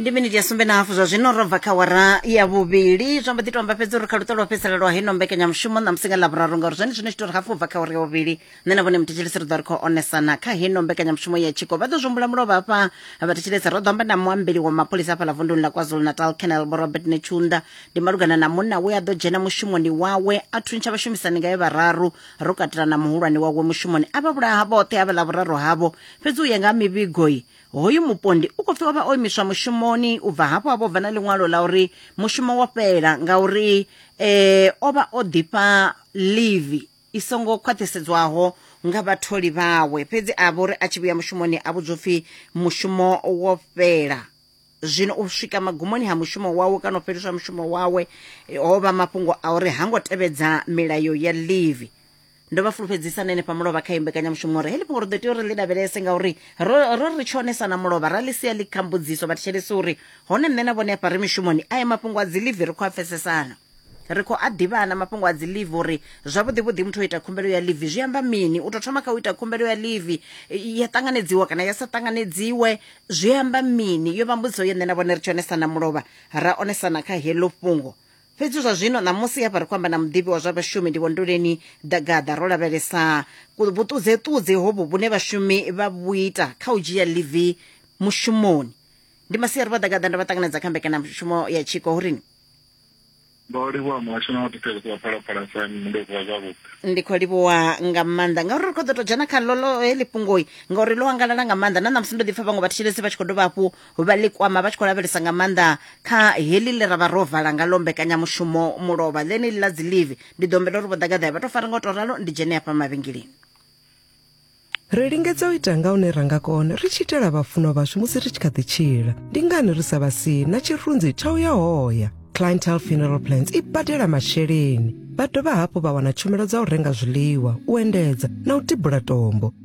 ndi miniti ya sumbe na hafu zwa zwino ro bva kha wara ya vhuvhili zwa mbo ḓi to amba fhedzi uri kha luṱo lwa fhedzisela lwa heno mbekanyamushumo na musi nga ḽavhuraru ngauri zwone zwino tshi to ri hafu bva kha wara ya vhuvhili nṋe na vhone muthetsheleso ri ḓo ri khou onesana kha heno mbekanyamushumo ya tshiko vha ḓo zwimbula mulovha hafha vhathetsheleso ro ḓo amba na muambeli wa mapholisa hafhaḽa vunduni ḽa kwazulu natal canal vho robert netshunda ndi malugana na munna we a ḓo dzhena mushumoni wawe a thuntsha vhashumisani ngae vhararu ro katela na muhulwane wawe mushumoni a vha vhulaha vhoṱhe havha ḽavhuraru havho Fhedzi u ya nga ha mivhigo, hoyu mupondi u khou pfi o vha o imiswa mushumoni u bva hafho a vho bva na ḽiṅwalo ḽa uri mushumo wo fhela ngauri e, o vha o ḓifha livi i songo khwaṱhisedzwaho nga vhatholi vhawe. Fhedzi a vho ri a tshi vhuya mushumoni a vhudzwa upfi mushumo wo fhela. Zwino u swika magumoni ha mushumo wawe kana u fheliswa mushumo wawe ho vha mafhungo a uri ha ngo tevhedza milayo ya livi. ndo vha fulufhedzisa na henefha mulovha kha imbekanyamushumo uri heḽi fhungo ri ḓo tea uri ḽi lavhelese ngauri ro ro ri tshonesa na mulovha ra ḽi sia ḽi kha mbudziso vhathetshelesi uri hone nṋe na vhone afha ri mishumoni aya mafhungo a dzi livi ri khou a pfesesana ri khou a ḓivhana mafhungo a dzi livi uri zwavhuḓi vhuḓi muthu o ita khumbelo ya livi zwi amba mini u tou thoma kha u ita khumbelo ya livi i- ya ṱanganedziwa kana ya sa ṱanganedziwe zwi amba mini yo vha mbudziso ye nṋe na vhone ri tshi onesana mulovha ra onesana kha heḽo fhungo Fhedzi zwa zwino ṋamusi hafha ri khou amba na muḓivhi wa zwa vhashumi ndi Vhondoleni Dagaḓa ro lavhelesa vhuṱudzeṱudze hovhu vhune vhashumi vha vhu ita kha u dzhia ḽivi mushumoni. Ndi masiari vha Dagaḓa ndo vha ṱanganedza kha mbekanyamushumo ya tshiko hu rini? Ndo livhuwa muhasho na vhathetshelesi vha Phalaphala FM ndo vuwa zwavhuḓi. Ndi khou livhuwa nga maanḓa ngauri ri khou ḓo tou dzhena kha ḽo ḽo heḽi fhungoi ngauri ḽo angalala nga maanḓa na ṋamusi ndo ḓi pfha vhaṅwe vhathetshelesi vha tshi khou dovha hafhu vha ḽi kwama vha tshi khou lavhelesa nga maanḓa kha heḽi ḽe ra vha ro vala nga lo mbekanyamushumo mulovha ḽeneḽi ḽa dzi live ndi ḓo humbela uri vho ḓagaḓaya vha tou fara nga u tou ralo ndi dzhene hafha mavhengeleni Ri lingedza u ita nga hune ra nga kona ri tshi itela vhafunwa vhashu musi ri tshi kha ḓi tshila. Ndi ngani ri sa vha si na tshirunzi tsha u ya hoya? Clientele Funeral Plans i badela masheleni. Vha dovha hafhu vha wana tshumelo dza u renga zwiḽiwa, u endedza na u tibula tombo.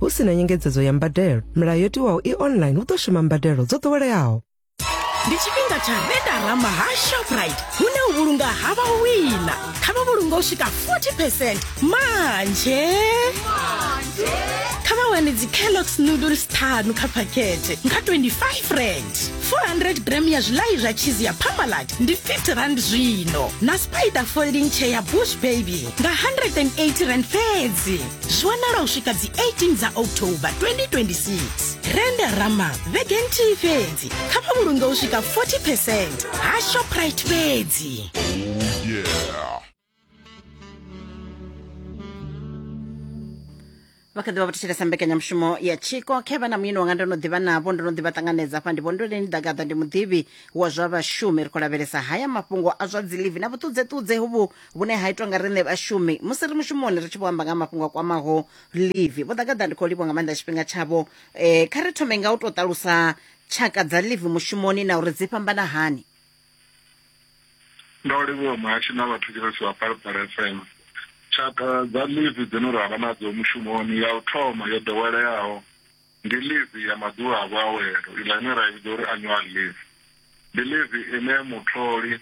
hu si na nyengedzedzo ya mbadelo milayo yo tiwaho i online hu ḓo shuma mbadelo dzo ḓoweleaho ndi tshifhinga tsha redarama ha shoprite hune u vhulunga ha vha wina kha vha vhulunga u swika 40 percent manje kha vha wane dzi-kellogs noodles ṱhanu kha phakhethe nga 25 rand 400 gram ya zwilayi zwa cheese ya pamalat ndi 50 rand zwino na spider folding chair ya bush baby nga 180 rand fhedzi zwi wanala u swika dzi 18 dza october 2026 rende rama vhege nthihi fhedzi kha vha vhulunge u swika 40 percent ha shoprite fhedzi vha kha ḓivha vha thetshelesa mbekanyamushumo ya tshiko khe vha na muyeni wanga ndo no ḓivha navho ndo no ḓivha ṱanganedza hafha ndi vhondoleni ḓagaḓa ndi muḓivhi wa zwa vhashumi ri khou lavhelesa haya mafhungo a zwa dzilivi na vhuṱudzeṱudze hovhu vhune ha itwa nga riṋe vhashumi musi ri mushumoni ri tshi vho amba nga mafhungo a kwamaho livi vho ḓagaḓa ndi khou livhwa nga maanḓa tshifhinga tshavho um kha ri thome nga u tou ṱalusa tshaka dza livi mushumoni na uri dzi fhambana hani ndo livhuwa muhashi na vhathetshelesi vha palapala fm tshaka dza livi dzine ra vha nadzo mushumoni ya u thoma yo ḓoweleaho ndi livi ya maḓuvha a vhuawelo iḽa ine ra i vhidza uri annual livi ndi livi ine mutholi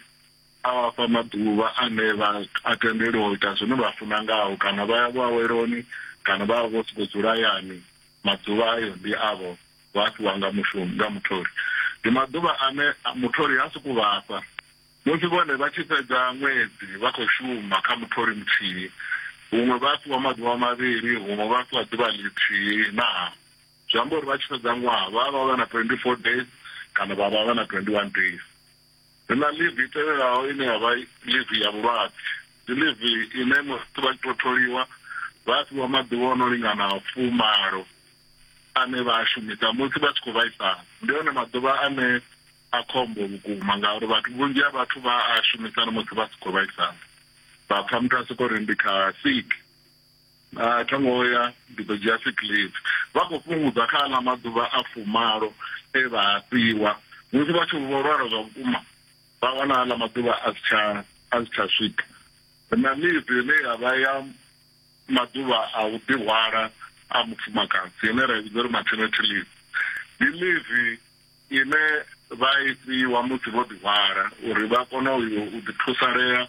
A vha fha maḓuvha ane vha a tendelwa u ita zwine vha funa ngao, kana vha ya vhuaweloni kana vha vha vho sokou dzula hayani. Maḓuvha ayo ndi avho vha a fhiwa nga mushumi, nga mutholi. Ndi maḓuvha ane mutholi ha sokou vha fha musi vhone vha tshi fhedza ṅwedzi vha khou shuma kha mutholi muthihi. Huṅwe vha a fhiwa maḓuvha mavhili, huṅwe vha a fhiwa ḓuvha ḽithihi na hafu. Zwi amba uri vha tshi fhedza ṅwaha vha vha vha na 24 days kana vha vha vha na 21 days. Ri na ḽivi i tevhelaho ine ya vha ḽivi ya vhulwadze. Ndi ḽivi ine musi vha tshi tou tholiwa vha a fhiwa maḓuvha o no lingana fumalo ane vha a shumisa musi vha tshi khou vhaisala. Ndi one maḓuvha ane a khombo vhukuma ngauri vhathu vhunzhi ha vhathu vha a shumisa na musi vha si khou vhaisala, vha pfha muthu a sokou ri ndi kha sick. A tho ngo ya, ndi ḓo dzhia sick leave. Vha khou fhungudza kha aḽa maḓuvha a fumalo e vha a fhiwa. Musi vha tshi vho lwala zwa vhukuma, vha wana aḽa maḓuvha a si tsha a si tsha swika. Ri na leave ine ya vha ya maḓuvha a u ḓihwala a mufumakadzi ine ra i vhidza uri maternity leave. Ndi leave ine vha i fhiwa musi vho ḓihwala uri vha kone u yo u ḓithusalea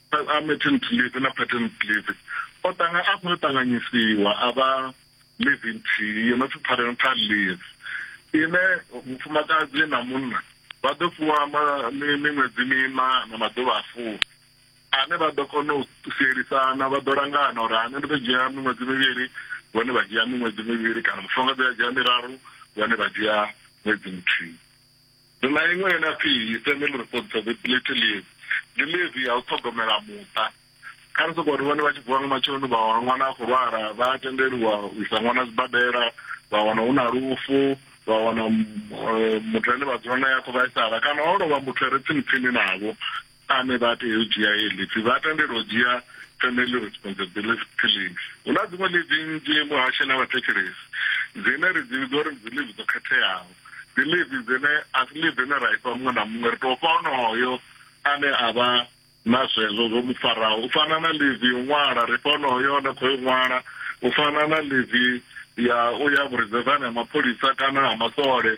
a maternity leave na paternity leave o tanga a khou ṱanganyisiwa a vha leave nthihi yo no pfi parental leave ine mufumakadzi na munna vha ḓo fhiwa miṅwedzi mina na maḓuvha a fumi ane vha ḓo kona u sielisana vha ḓo langana uri ane ndi ḓo dzhia miṅwedzi mivhili vhone vha dzhia miṅwedzi mivhili kana mufumakadzi a dzhia miraru vhone vha dzhia ṅwedzi muthihi Ri na iṅwe ine ya pfi Family Responsibility Leave, ndi ḽivi ya u ṱhogomela muṱa. Kha ri sokou ri vhone vha tshi vuwa nga matsheloni vha wana ṅwana a khou lwala, vha a tendeliwa u isa ṅwana zwibadela, vha wana hu na lufu, vha wana muthu ane vha dzula nae a khou vhaisala kana ho lovha muthu a re tsini tsini navho. Ane vha tea u dzhia heyi leave vha tendelwa u dzhia Family Responsibility Leave. Hu na dziṅwe leave nnzhi muhasho na vhathetshelesi dzine ri dzi vhidza uri ndi dzi leave dzo khetheaho. Ndi leave dzine a si leave ine ra ifha muṅwe na muṅwe, ri tou fha onoyo ane a vha na zwezwo zwo mu faraho. U fana na leave ya u ṅwala, ri fha onoyo o no khou yo ṅwala. U fana na leave ya u ya vhurizedzani ha mapholisa kana ha maswole.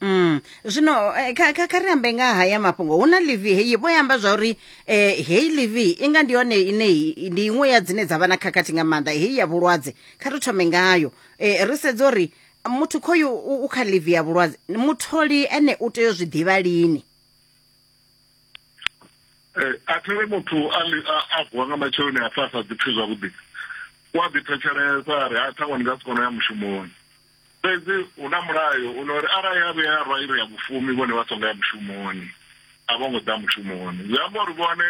Mm. Zwino eh, kha kha kha ri ambe nga haya mafhungo hu na livi heyi vho yamba zwa uri eh heyi livi inga ndi yone ine i- ndi iṅwe ya dzine dza vha na khakhathi nga maanḓa heyi ya vhulwadze kha ri thome ngayo eh ri sedza uri muthu khoyu u u kha livi ya vhulwadze mutholi ene u tea u zwi ḓivha lini Eh, a thele muthu a li- a- a vuwa nga matsheloni a pfa a sa ḓipfi zwavhuḓi u a ḓipfetshelesa a ri ha ṱhaṅwe ndi nga si kona u ya mushumoni Fhedzi hu na mulayo u no ri arali ha vhuya ha rwa iri ya vhufumi vhone vha songo ya mushumoni, a vho ngo ḓa mushumoni. Zwi amba uri vhone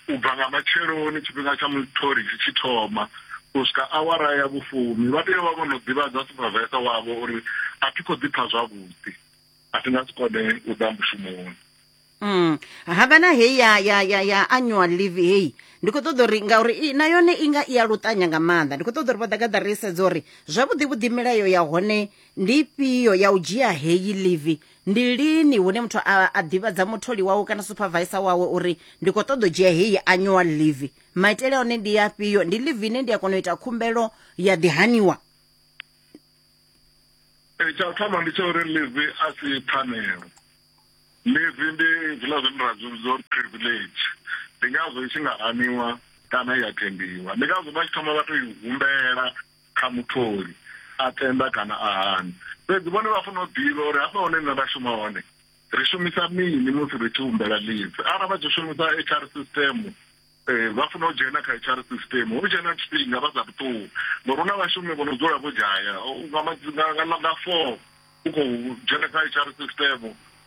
u bva nga matsheloni tshifhinga tsha mutholi tshi tshi thoma u swika awara ya vhufumi vha tea u vha vho no ḓivhadza suphavesa wavho uri a thi khou ḓi pfa zwavhuḓi, a thi nga si kone u ḓa mushumoni. Mm. havha na heyi ya ya ya ya annual leave heyi ndi khou ṱoḓa uri ngauri i- na yone i nga i ya luṱanya nga maanḓa ndi khou ṱoḓa uri vho ḓagaḓa ri sedze uri zwavhuḓi vhuḓi milayo ya hone ndi ifhio ya u dzhia heyi leave ndi lini hune muthu a, a ḓivhadza mutholi wawe kana supervisor wawe uri ndi khou ṱoḓa u dzhia heyi annual leave maitele a hone ndi afhio ndi leave ine ndi a kona u ita khumbelo ya ḓihaniwa Eh, tsha u thoma ndi tsha uri live a si pfanelo Ḽivi ndi hezwiḽa zwine ra zwi vhidza uri privilege, ndi ngazwo i tshi nga haniwa kana ya tendiwa. Ndi ngazwo vha tshi thoma vha tou i humbela kha mutholi, a tenda kana a hana. Fhedzi vhone vha fanela u ḓivha uri hafha hune nṋe nda shuma hone ri shumisa mini musi ri tshi humbela ḽivi. Arali vha tshi shumisa HR system. Ee, vha funa u dzhena kha HR system hu tshe na tshifhinga vha sathu ṱuwa ngori hu na vhashumi vho no dzula vho dzhaya U- nga ma- nga- nga ḽa- nga four u khou dzhena kha HR system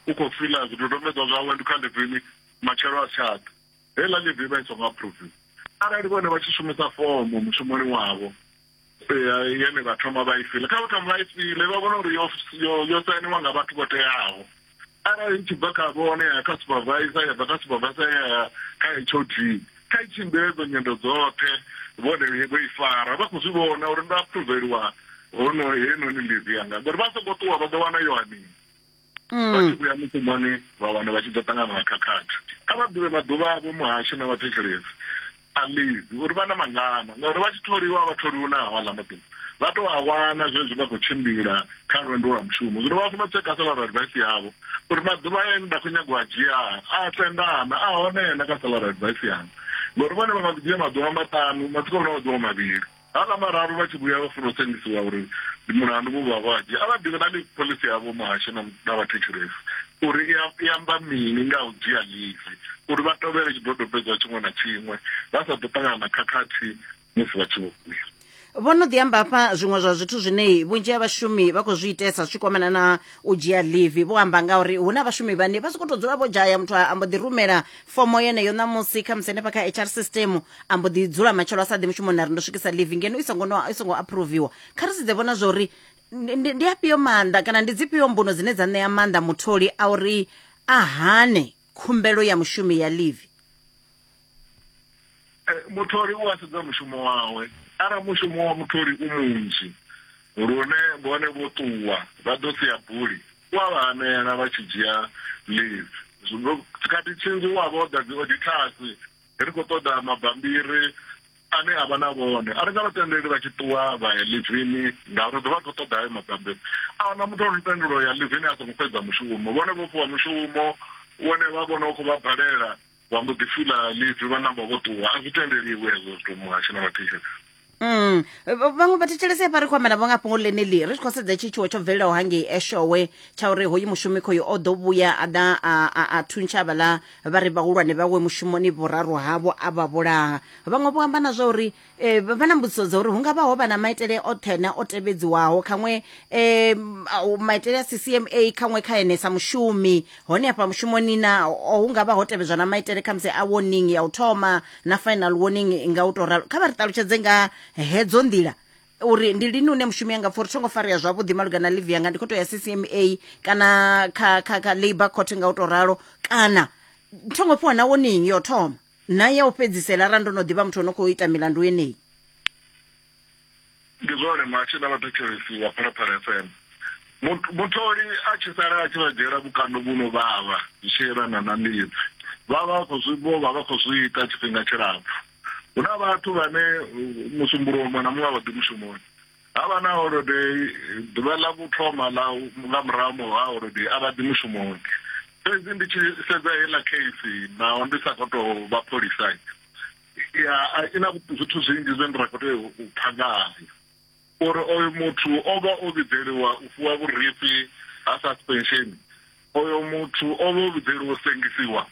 u khou fila zwidodombedzwa zwawe ndi kha livini matshelo a si tsha ḓa heiḽa livi i vha i songo aphuruviwa arali vhone vha tshi shumisa fomo mushumoni wavho yene vha thoma vha i fila kha vha thoma vha i file vha vhona uri yo sainiwa nga vhathu vho teaho arali i tshi bva kha vhone ya kha supervisor ya bva kha supervisor ya kha hod kha i tshimbile dzo nyendo dzoṱhe vhone vho i fara vha khou zwi vhona uri ndo aproveliwa hono henoni livi yanga ngori vha songo ṱuwa vha ḓo wana yo anini mm. vha tshi vhuya mushumoni vha wana vha tshi ḓo ṱangana na khakhathi kha vha ḓivhe maḓuvha avho muhasho na vhathetshelesi alizi uri vha na mangana ngauri vha tshi tholiwa vha tholiwa na hawala maḓuvha vha tou a wana zwezwi vha khou tshimbila kha lwendo lwa mushumo zwino vha funa u tsheka salary advice yavho uri maḓuvha ane nda khou nyagwa a dzhia a tendana a hone na kha salary advice yanga ngori vhone vha nga ḓi dzhia maḓuvha maṱanu matsiko vhona maḓuvha mavhili Havhala vhararu vha tshi vhuya vha funa u sengisiwa uri ndi mulandu vhu vha hwadzhe, a vha ḓivhi na ḽivi phoḽisi ya vho muhasho na na vhathetshelesi uri i i amba mini nga ha u dzhia ḽivi uri vha tovhele tshidodombedzwa tshiṅwe na tshiṅwe vha sa ḓo ṱangana na khakhathi musi vha tshi vho vhuya. Vho no ḓi amba hafha zwiṅwe zwa zwithu zwine vhunzhi ha vhashumi vha khou zwi itesa zwi tshi kwamana na u dzhia ḽivi. Vho amba nga uri hu na vhashumi vhane vha sokou tou dzula vho dzhaya muthu a mbo ḓi rumela fomo yeneyo ṋamusi khamusi henefha kha hr system a mbo ḓi dzula matshelo a sa ḓi mushumoni a ri ndo swikisa leave ngeno i songo no- i songo approviwa kha ri sedze vhona zwa uri ndi- ndi ndi afhio maanḓa kana ndi dzifhio mbuno dzine dza ṋea maanḓa mutholi a uri a hane khumbelo ya mushumi ya leave Mutholi u a sedza mushumo wawe. Arali mushumo wa mutholi u munzhi lune vhone vho ṱuwa vha ḓo sia buli, u a vha hanela vha tshi dzhia leave. Tshikhathi tshinzhi u a vha o ḓa dzi odithasi, ri khou ṱoḓa mabambiri ane a vha na vhone. A ri nga vha tendeli vha tshi ṱuwa vha ya ḽivini ngauri ri ḓo vha ri khou ṱoḓa hayo mabambiri. A hu na muthu o no tendelwa u ya ḽivini a songo fhedza mushumo. Vhone vho fhiwa mushumo une vha vhona u khou vha balela. vha mbo ḓi fila ḽivi vha namba vho ṱuwa a zwi tendeliwi hezwo zwithu muhasho na vhathetshelesi mm. vhaṅwe vhathetshelesi hafha ri khou amba navho nga fhungo ḽeneḽi ri tshi khou sedza tshi tshiwo tsho bvelelaho hangei eshowe tsha uri hoyu mushumi khoyu o ḓo vhuya a ḓa a thuntsha avhaḽa vha ri vhahulwane vhawe mushumoni vhuraru havho a vha vhulaha vhaṅwe vho amba na zwa uri e, vha na mbudziso dza uri hu nga vha ho vha na maitele oṱhe na o tevhedziwaho khaṅwe um maitele a ccma khaṅwe kha ene sa mushumi hone afha mushumoni na hu nga vha ho tevhedzwa na maitele kha musi a warning ya u thoma na final warning nga u to ralo kha vha ri ṱalutshedze nga hedzo nḓila uri ndi lini une mushumi anga pfa uri thongo farea zwavhuḓi malugana live yanga ndi khou to ya ccma kana kha kha kha labour court nga u to ralo kana thongo fhiwa na warning yo thoma na ya u fhedzisela ra ndo no ḓivha muthu o no khou ita milandu yeneyi ndi zwone muhashi na vhathetshelesi vha phalaphala fm mutholi a tshi sala a tshi vha dzhiela vhukando vhu no vhavha zwi tshi yelana na mbidzi vha vha khou zwi vho vha vha khou zwi ita tshifhinga tshilapfu hu na vhathu vhane musumbuluwo muṅwe na muṅwe a vha ḓi mushumoni Ha vha na holodei, ḓuvha ḽa u thoma ḽa nga murahu ha holodei a vha ḓi mushumoni. Fhedzi ndi tshi sedza heiḽa kheisi, naho ndi sa khou tou vha pholisa, ya a i na zwithu zwinzhi zwine ra khou tea u pfa ngayo. Uri oyo muthu o vha o vhidzeliwa u fhiwa vhurifhi ha suspension, oyo muthu o vha o vhidzeliwa u sengisiwa,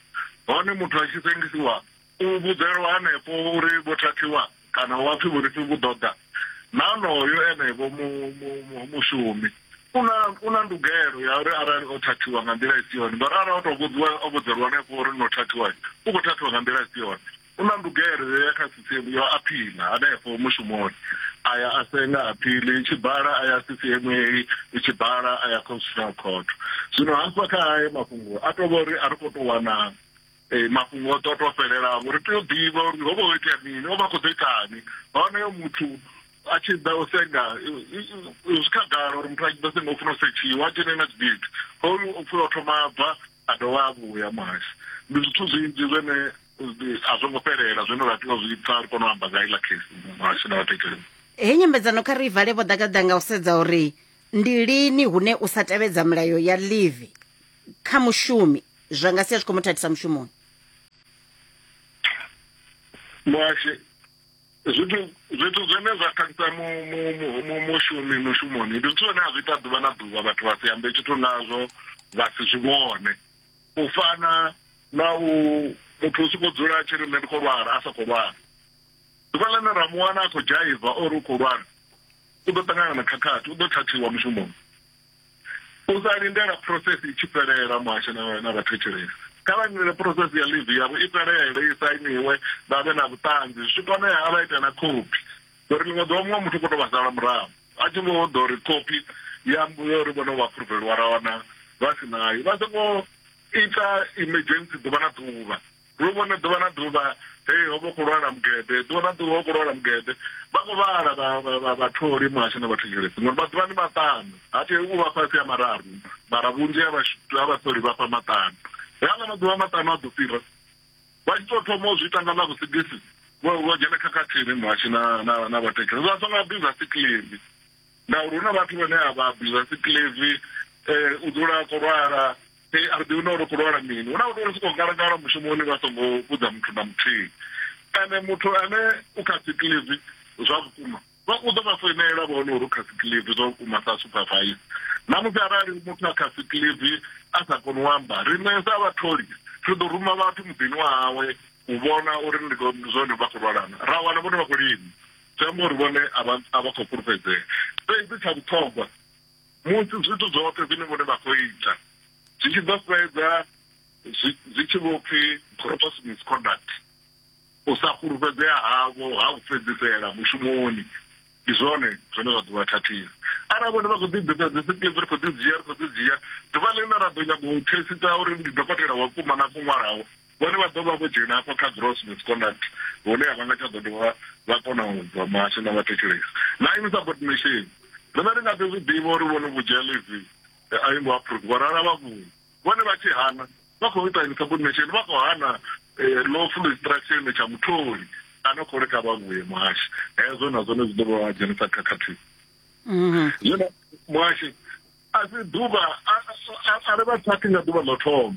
hone muthu a tshi sengisiwa, U vhudzelwa hanefho uri vho thathiwa kana wa pfi vhurifhi vhu ḓo ḓa, na onoyo ene-vho mu, mu, mu, mushumi u na, u na ndugelo ya uri arali o thathiwa nga nḓila i si yone, ngauri arali o tou vhudziwa, o vhudzelwa hanefho uri no thathiwa, u khou thathiwa nga nḓila i si yone, u na ndugelo yo ya kha sisiemu ya u aphiḽa hanefho mushumoni, a ya a senga aphiḽi i tshi bala, a ya sisiemu heyi i tshi bala, a ya Constitutional Court. Zwino hafha kha ayo mafhungo a tou vha uri a ri khou tou wana Ee, mafhungo o ḓo tou fhelelavo ri tea u ḓivha uri ho vha ho itea mini o vha a khou ḓo itani honoyo muthu a tshi ḓa u senga zwi khagala uri muthu a tshi ḓo senga u funa u setshiwa a dzhene na tshigidi hoyu u pfula o thoma a bva a dovha a vhuya muhasho ndi zwithu zwinzhi zwine a zwo ngo fhelela zwine ra tea u zwi pfa ri kone u amba nga iḽa khesi muhasho na vhathetshelesi heyi nyambedzano kha ri i vale vho ḓagaḓa nga u sedza uri ndi lini hune u sa tevhedza milayo ya livi kha mushumi zwa nga sia zwi khou mu thathisa mushumoni muhashe zwithu zwithu zwine zwa khakhisa mushumi mushumoni ndi zwithu zwine a zwi ita ḓuvha na ḓuvha vhathu vha si ambe tshithu nazwo vha si zwi vhone u fana na u muthu u sokou dzula a tshi ri nṋe ndi khou lwala a sa khou lwala ḓuvha ḽine ra mu wana a khou dzhaiva ori u khou lwala u ḓo ṱangana na khakhathi u ḓo thathiwa mushumoni U sa lindela phuroseisi i tshi fhelela, muhasho na vhathetshelesi kha vha lindele phuroseisi ya ḽivi yavho i fhelele, i sainiwe, vha vhe na vhuṱanzi, zwi tshi konea a vha ite na khophi, ngauri ḽiṅwe ḓuvha muṅwe muthu u khou tou vha sala murahu a tshi vho ḓa uri khophi ya uri vhone vho aphuruveliwa ra wana vha si nayo. Vha songo ita emergency ḓuvha na ḓuvha. Ri u vhone ḓuvha na ḓuvha, hei ho vha hu khou lwala mugede, ḓuvha na ḓuvha hu khou lwala mugede. Vha khou vhala vha, vha, vha, vhatholi muhasho na vhathetshelesi, ngori maḓuvha ndi maṱanu, ha tei u vha fhasi ha mararu, mara vhunzhi ha vha vhatholi vha fha maṱanu. He aḽa maḓuvha maṱanu a ḓo fhira, vha tshi tou thoma u zwi ita nga ḽa vhusigisi, vho, vho dzhena khakhathini muhasho na, na, na vhathetshelesi. Vha songo abuza sikiḽivi, ngauri hu na vhathu vhane a vha abuza sikiḽivi, eh, u dzula a khou lwala. Ee, a ri ḓivhi na uri khou lwala mini hu na vhathu vho sokou ngalangala mushumoni vha songo vhudza muthu na muthihi ene muthu ane u kha sikilivi zwa vhukuma vha u ḓo vha foinela vha hone uri u kha sikilivi zwa vhukuma sa supervise na musi arali muthu a kha sikilivi a sa koni u amba riṋe sa vhatholi ri ḓo ruma vhathu muḓini wa hawe u vhona uri ndi zwone vha khou lwalana ra wana vhone vha khou lima zwi amba uri vhone a vha khou fhulufhedzea fhedzi tsha vhuṱhogwa Musi zwithu zwoṱhe zwine vhone vha khou ita zwi tshi ḓo fhedza zwi zwi tshi vho pfi gross misconduct, u sa fhulufhedzea havho ha u fhedzisela mushumoni, ndi zwone zwine zwa ḓo vha thathisa. Arali vhone vha khou ḓi ḓisa dzi sikiḽipi, ri khou dzi dzhia, ri khou dzi dzhia, ḓuvha ḽine ra ḓo nyaga u thesitha uri ndi dokotela wa vhukuma na khou ṅwalaho, Vhone vha ḓo vha vho dzhena afho kha gross misconduct hune a vha nga tsha ḓo dovha vha kona u bva muhasho na vha thetshelesa. Na insubordination, riṋe ri nga ḓi zwi ḓivha uri vho no vhudzhea ḽivi a i ngo aphuruviwa ra lala vha vhuya. Vhone vha tshi hana, vha khou ita insubordination, vha khou hana lawful instruction tsha mutholi a no khou ri kha vha vhuye muhasho. Hezwo na zwone zwi ḓo vha dzhenisa khakhathini. Zwino muhasho a si ḓuvha a ri vha thathi nga ḓuvha ḽo thoma.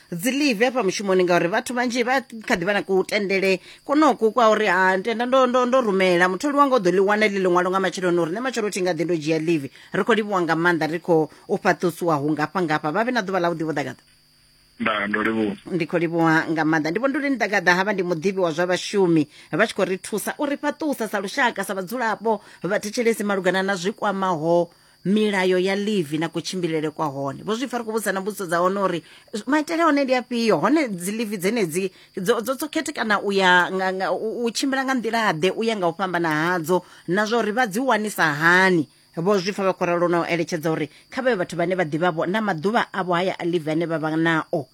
dzi live hafha mushumoni ngauri vhathu vhanzhi vha kha ḓi vha na kutendele konoku kwa uri ha tenda ndo, ndo, ndo rumela mutholi wanga u ḓo ḽi wana ḽi ḽiṅwalo nga matsheloni uri nṋe matshelo thi nga ḓi ndo dzhia live ri khou livhuwa nga maanḓa ri khou u fhaṱusiwa hu ngafha ngafha vha vhe na ḓuvha ḽa vhuḓi vho ḓagaḓa ndaa ndo livhuwa ndi khou livhuwa nga maanḓa ndi vhondoleni ḓagaḓa havha ndi muḓivhi wa zwa vhashumi vha tshi khou ri thusa u ri fhaṱusa sa lushaka sa vhadzulapo vhathetshelesi malugana na zwi kwamaho milayo ya livi na kutshimbilele kwa hone vho zwi pfa ri khou vhudzisa na mbudziso dza hone uri maitele a hone ndi afhio hone dzi livi dzenedzi dzo dzo- dzo khethekana u ya nga- nga- u u tshimbila nga nḓila-ḓe u ya nga u fhambana hadzo na zwa uri vha dzi wanisa hani vho zwi pfa vha khou ralo na u eletshedza uri kha vhayo vhathu vhane vha ḓivhavho na maḓuvha avho haya a livi ane vha vha nao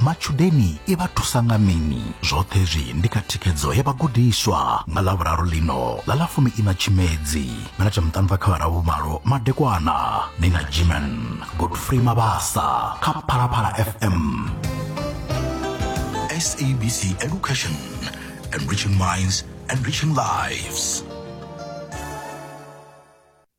Matshudeni i vha thusa nga mini? Zwoṱhe hezwi ndi kha thikhedzo ya vhagudiswa. Nga Ḽavhuraru ḽino ḽa ḽa fumi-iṋa Tshimedzi, minete miṱanu bva kha vhara vhumalo madekwana, ni na Jiman Godfrey Mabasa kha Phalaphala FM. SABC Education, enriching minds, enriching lives.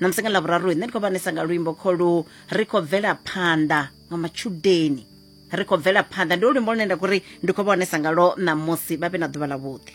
na musi nga ḽavhuraru nṋe ndi khou vhanesa nga luimbo kholu ri khou bvela phanḓa nga matshudeni ri khou bvela phanḓa ndi luimbo lune nda khou ri ndi khou vha onesa ngalwo ṋamusi vha vhe na ḓuvha ḽavhuḓi